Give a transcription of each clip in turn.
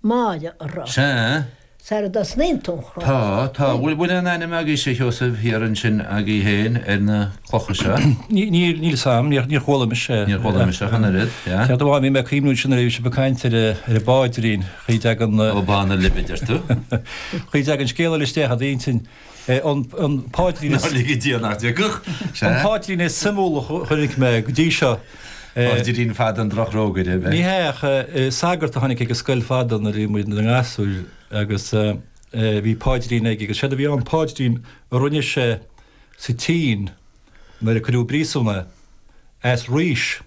Máire a rá. Sea. Sara dtosnaíonn tú an chrá. Tá, tá. Bhfuil, bhfuil aon ainm agaibhse, a Sheosaimh, thiar ansin agaibh féin ar na clocha seo? Ní, níl, níl 's a'm, níor, níor chuala mise. Níor chuala mise ach an oiread, yeah. Céard a bhá, bhí mé ag cuimhniú ansin nuair a bhí sibh ag caint ar a, ar an bpaidrín, chaoi a dtagann. Ó Bánaireilbh a deir tú? Chaoi a dtagann scéal eile isteach i d'intinn. An paidrín is. Nár lige Dia nach dtiocfadh, sea. An paidrín is suimiúla a chonaic mé go dtí seo. Paidrín fada an drochrógaire, ab ea? Ní hea, ach sagart a tháinig ag an scoil fadó nuair a bhí muid ina ngasúir agus bhí paidrín aige agus séard a bhí ann, paidrín a rinne sé sa tSín nuair a cuireadh i bpríosún é. As rís,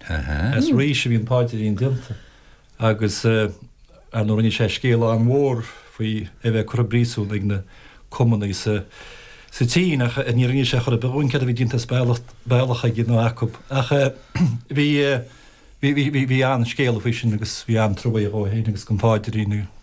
as rís a bhí an paidrín déanta. agus ar ndóigh rinne sé scéal an-mhór faoi a bheith curtha i bpríosún ag na cumannaigh sa tSín, ach níor inis sé chor ar bith dhúinn céard a bhí déanta as bealach aige nó acu. Ach bhí an-scéala faoi sin agus bhí an-trua aige dhó féin agus don phaidrín.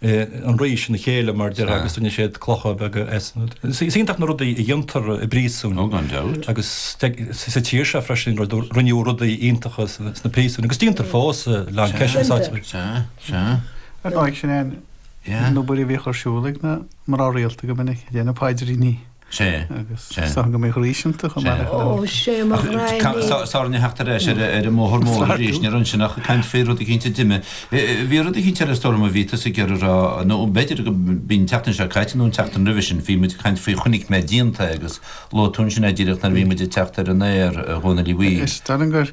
an rís ina chéile mar a déarfá agus rinne siad clocha beaga as. Is iontach na rudaí a dhéantar i bpríosún. Ó gan dabht. Agus sa tír seo freisin rinneadh rudaí iontacha sna príosúin agus déantar fós a lán ceist sna sáite bhreise. Sea, sea. Ar ndóigh sin é an obair a bhíodh ar siúl ag na mná rialta go minic, ag déanamh paidríní. Sé, Agus sé. sáinn go mbeidh arís iontu chomh maith le Sé. Ó, sé mo Ach, ca- ghraidhní. sa- sár ina theacht ar ais ar a- ar an mbóthar mór Sláirtiú. arís, ní raibh ansin ach caint faoi rud eicínt dime. Eh, eh, bhí rud eicínt eile is dóigh liom a bhí tusa ag iarraidh a rá, nó b'fhéidir go mb'in an tseachtain seo caite nó an tseachtain roimhe sin, bhí muid ag caint faoi chonaic mé díonta agus luaigh tú ansin é díreach nuair a bhí muid ag teacht ar an aer, eh, Dhónaill Uí. Is dom gur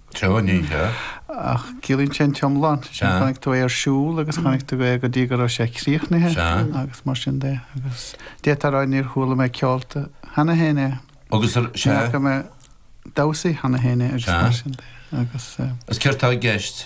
Teo, ní hea. Ach ciallaíonn sé an t-iomlán. Sé sin, chonaic tú é ar siúl agus chonaic tú é go dtí go raibh sé críochnaithe agus mar sin de. Agus d'fhéadfá a rá, níor chuala mé ceolta cheana féin é. Agus ar sé? Ní fhaca mé damhsaithe cheana féin é agus mar sin de. Agus. Is céard tá i gceist?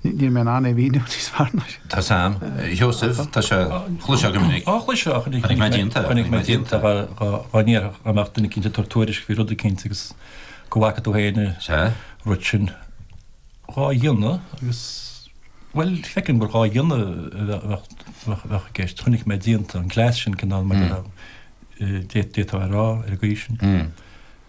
Níl mé in ann é a mhíniú níos fearr ná sin. Tá 's a'm. Sheosaimh, tá sé chloisteáil go minic. Á chloisteáil go minic. Chonaic mé díonta. Chonaic mé díonta. Dhá ndéarfá go mbeadh duine eicínt ag tabhairt tuairisc faoi rud eicínt agus go bhfaca tú féin an rud sin dhá dhéanamh agus, bhuel, feicim gur dhá dhéanamh a bheadh i gceist. Chonaic mé díonta an cleas sin cineál mar a d'fhéadfá a rá ar an gcaoi sin.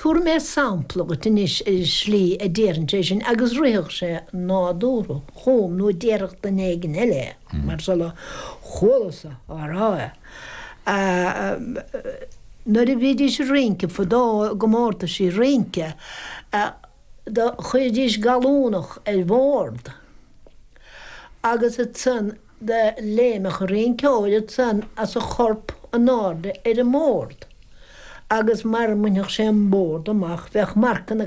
Tabharfaidh mé sampla agat anois ar an slí a déarfainnse é sin agus rithfeadh sé nádúrtha chugam nó déarfadh duine éigin eile é, mar seo a chualas-sa á rá é. Nuair a bhídís ag rince fadó i gcomórtaisí rince, Do chuiridís gallúnach ar bhord agus ansan do léimeadh an rinceoir ansan as a chorp anáirde ar an mbord agus mara mbainfeadh sé an bord amach bheadh marcanna